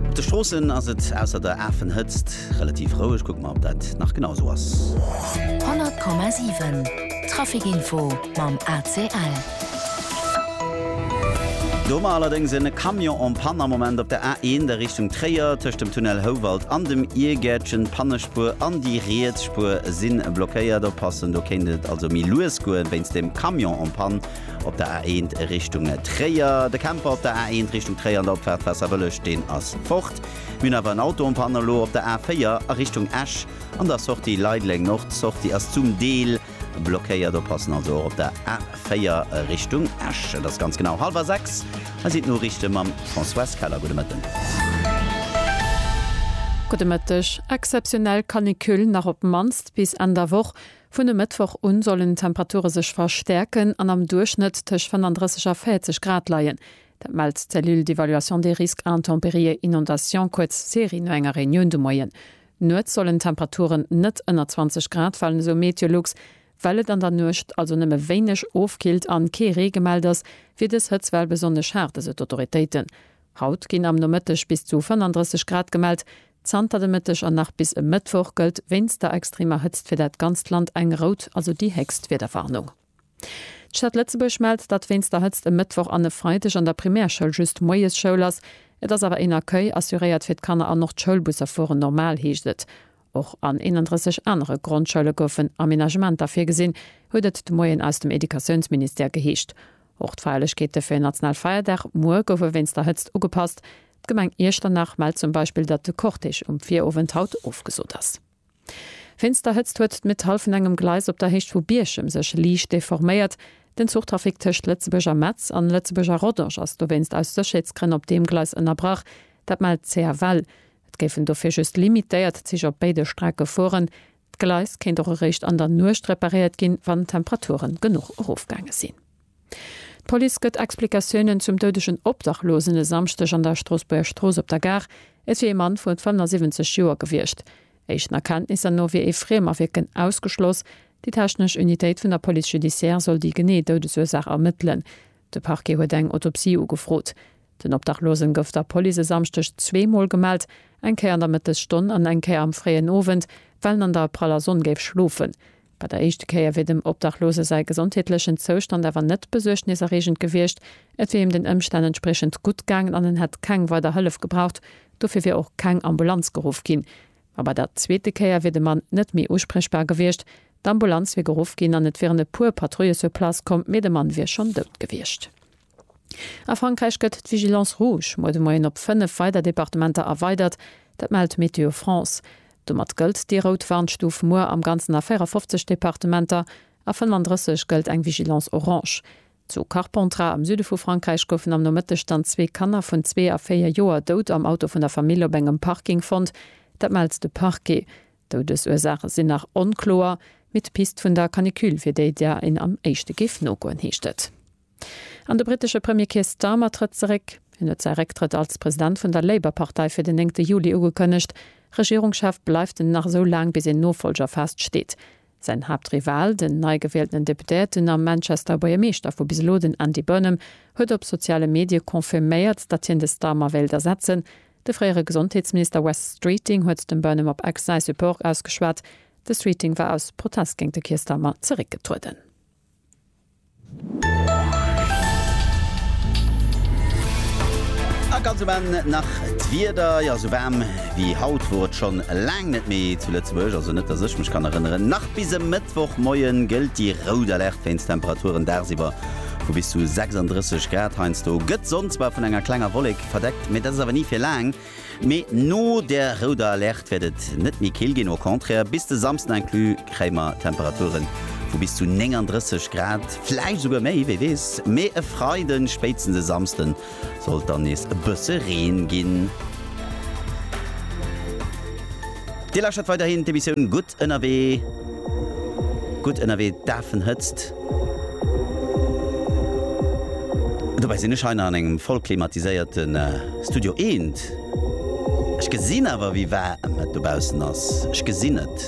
Op de Stroossen ass et ausser der Afenhëtzt relativ roueg. Kucke mer, ob dat nach genau esou ass. 100,7 Traficinfo mam ACL. Do hu mer allerdéngs en Camion en panne am Moment op der A1 a Richtung Tréier. Tëscht dem Tunnel Houwald an dem Iergäertchen. D'Pannespuer an déi riets Spuer si blockéiert. Oppassen, do kéint et also méi lues goen wéinst dem Camion en panne. Op der A1 Richtung Tréier, de Camper op der A1 Richtung Tréier an der Opfahrt Wasservëlleg, deen ass fort. Mir hunn awer en Auto en panne elo op der A4 a Richtung Esch an der Sortie Leideleng Nord. D'Sortie ass zum Deel blockéiert, oppassen also och op der A4 Richtung Esch. Et ass ganz genau hallwer sechs. Hei sinn d'Noriichte mam Françoise Keller. Gudde Mëtten. Gudde Mëtteg. Exzeptionell Canicule nach op d'mannst bis Enn der Woch. Vun e Mëttwoch un sollen d'Temperature sech verstäerken an am Duerchschnëtt tëscht 35 a 40 Grad leien. Dat mellt d'Cellule d'évaluation des risques intempéries et inondations, kuerz CERI, no enger Reunioun de Moien. Nuets sollen d'Temperaturen net ënner 20 Grad falen, esou Meteolux. Well et an der Nuecht also nëmme wéineg ofkillt an kee Ree gemellt ass, wier dës Hëtztwell besonnesch haart, esou d'Autoritéiten. Haut ginn am Nomëtteg bis zu 35 Grad gemellt. Zanter de Mëtteg an nach bis e Mëttwoch gëllt wéinst der extremer Hëtzt fir dat ganzt Land eng rout, also déi héchst Wiederwarnung. D'Stad Lëtzebuerg mellt, datt wéinst der Hëtzt e Mëttwoch an e Freideg an der Primärschoul just moies Schoul ass. Et ass awer een Accueil assuréiert fir d'Kanner an och d'Schoulbusser fueren normal, heescht et. Och an 31 anere Grondschoule goufen Amenagementer virgesinn, huet et de Moien aus dem Educatiounsministère geheescht. Och d'Feierlechkeete fir en national Feierdag muer goufe wéinst der Hëtzt ugepasst. D'Gemeng Iechternach mellt zum Beispill, datt de Cortège um Virowend haut ofgesot ass. Wéinst der Hëtzt huet d'Metall vun engem Gleis op der Héicht vu Bierchem sech liicht deforméiert. Den Zuchtrafic tëscht Lëtzebuerg a Metz an Lëtzebuerg a Rodange ass dowéinst aus Sécherheetsgrënn op deem Gleis ënnerbrach. Dat mellt d'CFL. Et géifen dofir just limitéiert Zich op béide Strecke fueren. D'Gleis kéint och eréischt an der Nuecht reparéiert ginn, wann d'Temperature genuch erofgaange sinn. D'Police gëtt Explikatiounen zum doudegen Obdachlosen e Samschdeg an der Stroossbuerger Strooss op der Gare. Et wier ee Mann vu 75 Joer gewiescht. Éischten Erkenntnisser no wier ee Friem a Wierken ausgeschloss. Déi technesch Unitéit vun der Police judiciaire soll déi genee Doudesursaach ermëttelen. De Parquet huet eng Autopsie ugefrot. Den Obdachlosen gouf der Police e Samschdeg zweemol gemellt, eng Kéier an der Mëttesstonn an eng Kéier am fréien Owend, well en an der praller Sonn géif schlofen. Bei der éischte Kéier wier dem Obdachlose säi gesondheetlechen Zoustand awer net besuergneserreegend gewiescht. Et wier him den Ëmstänn entspriechend gutt gaangen an en hätt keng weider Hëllef gebraucht. Dofir wier och keng Ambulanz geruff ginn. Ma bei der zweete Kéier wier de Mann net méi uspriechbar gewiescht. D'Ambulanz wier geruff ginn an et wieren e puer Patrouilles sur place komm, mee de Mann wier schonn dout gewiescht. A Frankräich gëtt d'Vigilance rouge muer de Moien op 5 weider Departementer erweidert. Dat mellt Météo France. Domat gëllt déi rout Warnstuf muer am Ganzen a 54 Departementer, a 35 gëllt eng Vigilance orange. Zu Carpentras am Süde vu Frankräich goufen am Nomëtteg dann zwee Kanner vun zwee a véier Joer dout am Auto vun der Famill op engem Parking fonnt. Dat mellt de Parquet. D'Doudesursaache sinn nach onkloer, mee d'Pist vun der Canicule wier déi, där een am éischte géif nogoen, heescht et. An de brittesche Premier Keir Starmer trëtt zeréck. Hien huet säi Récktrëtt als President vun der Labour-Partei fir den néngte Juli ugekënnegt. Regierungschef bleift en nach esou laang, bis een Nofollger fest steet. Säin Haaptrival, den neigewieltenen Deputéierten a Manchester Buergermeeschter vu bis elo, den Andy Burnham, huet op soziale Medie confirméiert, datt hien de Starmer wéilt ersetzen. De fréiere Gesondheetsminister Wes Streeting huet dem Burnham op Ex säi Support ausgeschwat. De Streeting war aus Protest géint de Keir Starmer zeréckgetrueden. A ganz um Enn nach d'Wieder. Jo, esou waarm wéi haut wor et schonn laang net méi zu Lëtzebuerg, also net dass ech mech kann erënneren. Nach bis e Mëttwochmoien gëllt déi rout Alerte wéinst Temperaturen dagsiwwer vu bis zu 36 Grad. Heiansdo gëtt d'Sonn zwar vun enger klenger Wollek verdeckt, mee dat ass awer ni fir laang. Mee no der rouder Alerte wäert et net méi kill ginn, au contraire. Bis de Samsden inclus kréie mer Temperature vu bis zu 39 Grad, vläicht esouguer méi, wie weess. Mee e Freiden, spéitstens e Samsden, soll et dann nees e bësse Reen ginn. Dir lauschtert weiderhin d'Emissioun Gutt ënnerwee. Gutt ënnerwee, Dafenhëtzt. Dobäi sinn ech hei nach an engem voll klimatiséierte Studio eent. Ech gesinn awer, wéi waarm et dobaussen ass. Ech gesinn et.